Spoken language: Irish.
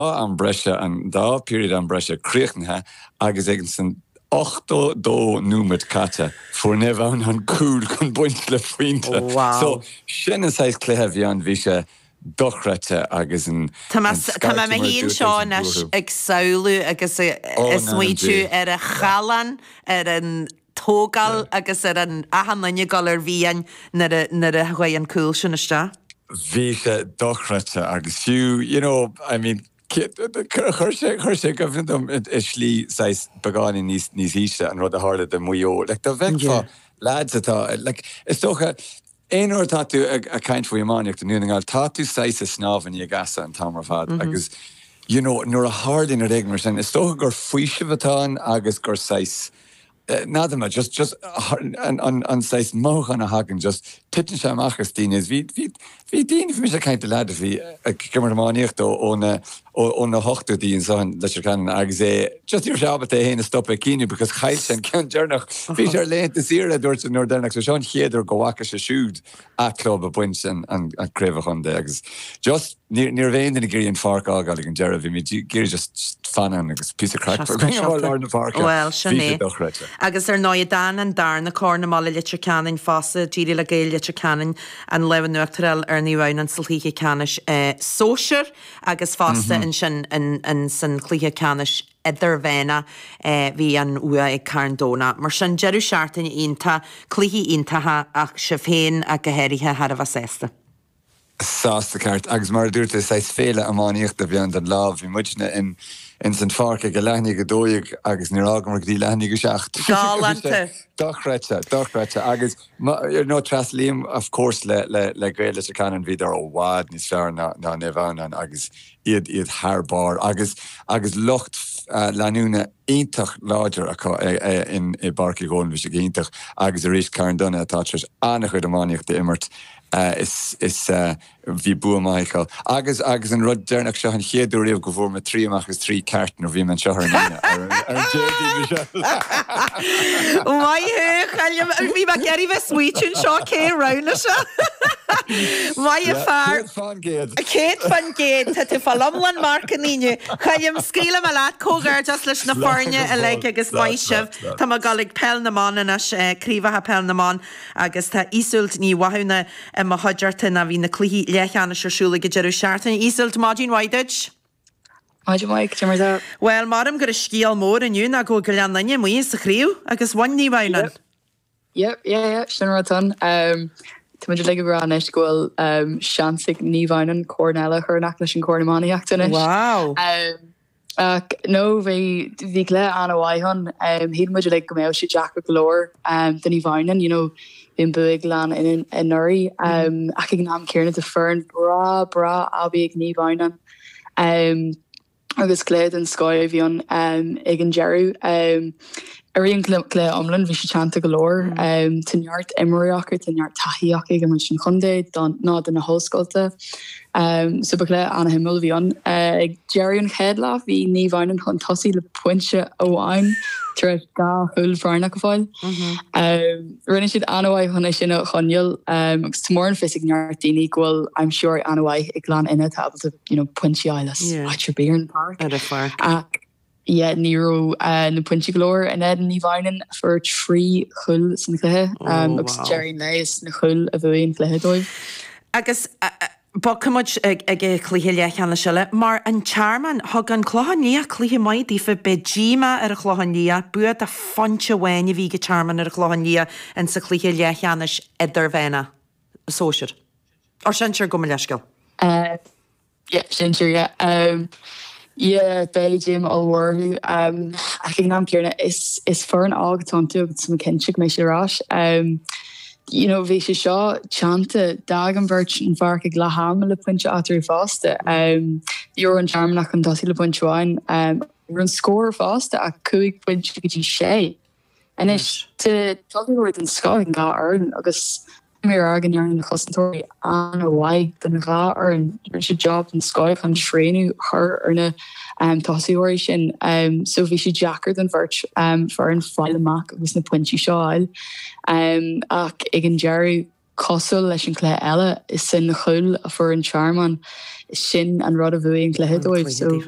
dá am breise, an dá period am breise críochnaithe agus ag an san 80 dó nóiméad caite, fuair Naomh Adhamhnáin an cúl chun baint le pointe. So, sin an saghas cluiche a bhí ann. Bhí sé dochreidte agus an scairteadh mar a dúirt tú ag an gcúl. Tá mé fhéin seo anois ag samhlú agus ag smaoitiú ar an challán, ar an. tógáil agus ar an achan duine ag dul i bhfiáin nuair a chuaigh an cúl sin isteach. Bhí sé dochreidte agus fiú, you know, I mean, chuir sé, chuir sé i gcuimhne dom i slí saghas beagáinín níos ísle an rud a tharla do Mhaigh Eo. Like, dá bhfeicfeá leaids atá, like, is dócha, Aon uair atá tú ag caint faoi iománaíocht i nDún na nGall, tá tú saghas ag snámh in aghaidh easa an t-am ar fad agus you know nuair a tharlaíonn rud éigin mar sin, is dócha gur faoiseamh atá ann agus gur saghas, n'fheadar, just, just an saghas mothúchán a thagann, just titeann sé amach as daoine. Bhí, bhí, bhí daoine, bhí mise ag caint le leaid a bhí ag imirt iománaíochta ó na ó na hochtóidí anseo i Leitir Ceanainn agus é just ní raibh sé ábalta é féin a stop le caoineadh because chaill sé an ceann deireanach. Bhí sé ar laethanta saoire a dúirt sé an uair dheireanach so seo an chéad uair go bhfaca sé siúd an club ag baint an craobh an chontae agus just ní raibh aon duine ag iarraidh an pháirc a fhágáil ag an deireadh bhí muid ag iarraidh just fanacht ann agus píosa craic a bheith againn amuigh i lár na páirce. Bhuel sin é. Agus ar ndóigh d'fhan an darna corn i mbaile Leitir Ceanainn fosta díreach le Gaeil Leitir Ceanainn an lámh in uachtar a fháil ar Naomh Adhamhnáin sa Chluiche Ceannais Sóisear. agus fosta ansin san chluiche ceannais idirmheánach bhí an bhua ag Carn Domhnach. Mar sin deireadh seachtaine iontach, cluichí iontacha ach sibh féin ach go háirithe thar a bheith sásta. Sásta ceart agus mar a dúirt tú saghas féile iománaíochta a bhí ann don lá. Bhí muidne ins an pháirc ag a leath i ndiaidh a dó dhéag agus níor fhágamar go dtí leath i ndiaidh a seacht. Galánta. Dochreidte, dochreidte agus. ar ndóigh tréaslaím of course le Gaeil Leitir Ceanainn, bhíodar i bhfad níos fearr ná Naomh Adhamhnáin agus iad iad thar barr agus agus lucht leanúna iontach láidir acu in i bPáirc Uí Dhomhnaill, bhí sé go hiontach agus arís Carndonagh atá tar éis an-chuid iománaíocht a imirt is is bhí bua maith acu. Agus, agus an rud deireanach, seo an chéad uair riamh go bhfuair mé trí amach as trí ceart nuair a bhí mé anseo ar an Aoine, ar an, ar an Déardaoin, Michelle! Maith thú, Choilm! Bhí mé ag iarraidh bheith ag smaoitiú anseo cé a roghnaigh seo! Maith an fear! Céad fán gcéad! Céad fán gcéad! Tá tú ag fáil iomlán marcanna inniu. Choilm, scaoilfidh mé leat, comhghairdeas leis na foirne uilig agus maith sibh. Tá mé ag dul ag Peil na mBan anois, Craobhacha Peil na mBan. agus tá Iseult Ní Mhathúna i mo chuideachta, bhí na cluichí leathcheannais ar siúl ag an deireadh seachtaine. Iseult, maidin mhaith duit! Maidin mhaith, cad é mar atá? Bhuel, mhothaím gurb é an scéal mór inniu ná go bhfuil Gleann Fhinne amuigh as an chraobh agus bhain Naomh Adhamhnáin. Yep, yeah, yeah, sin an rud san. Tá muid uilig ag rá anois go bhfuil seans ag Naomh Adhamhnáin corn eile a chur in aice leis an corn iománaíochta anois. Wow! Ach no bhí bhí cluiche an-mhaith ann. Shíl muid uilig go mbeadh sé deacair go leor do Naomh Adhamhnáin, you know, bhí an bua ag an Ghleann anuraidh ach ag an am céanna tá foireann breá breá aibí ag Naomh Adhamhnáin agus cluiche den scoth a bhí ann ag an deireadh. Ar an gcluiche iomlán, bhí sé teannta go leor. Tá neart imreoirí acu, tá neart taithí acu ag imirt don chontae nó do na hollscoilte. So ba chluiche an-shuimiúil a bhí ann. Ag deireadh an chéad leath, bhí Naomh Adhamhnáin chun tosaigh le pointe amháin tar éis dhá chúl bhrónach a fháil. Rinne siad an-mhaith chun é sin a choinneáil agus mar tá a fhios ag neart daoine go bhfuil aimsitheoirí an-mhaith ag Gleann Fhinne atá ábalta pointí a fháil as áit ar bith ar an bpáirc. yeah ní raibh na pointí go leor in éadan Naomh Adhamhnáin a fuair trí chúl san chluiche agus ag deireadh an lae is na cúil a bhuaigh an cluiche dóibh. Agus bogfaidh muid ag cluiche leathcheannais eile, mar an Tearmann. Thug an Clochán Liath cluiche maith daofa. Beidh díomá ar an Chlochán Liath. Bua de phointe amháin a bhí ag an Tearmann ar an Chlochán Liath in sa chluiche leathcheannais idirmheánach, sóisir. Or sinsir, gabh mo leithscéal. Yep, sinsir, yeah. Yeah, beidh díomá mhór orthu. Ach ag an am céanna, is foireann óg atá iontu agus táim cinnte go mbeidh siad ar ais. You know, bhí sé seo teannta, d'fhág an bheirt an pháirc ag leath ama le pointe eatarthu fosta. Bhí an Tearmann chun tosaigh le pointe amháin. Ní raibh an scór fosta ach cúig phointe go dtí sé. Anois, tá dochar den scoth ag an dhá fhoireann agus tá mé ar aird go ndearna na cosantóirí an-mhaith don dhá fhoireann. Rinne siad jab den scoth chun srianadh a chur ar na tosaitheoirí sin so bhí sé deacair don bheirt foireann fáil amach agus na pointí seo a fháil. Ach ag an deireadh, cosúil leis an chluiche eile, is é an cúl a fuair an Tearmann, sin an rud a bhuaigh an cluiche dóibh.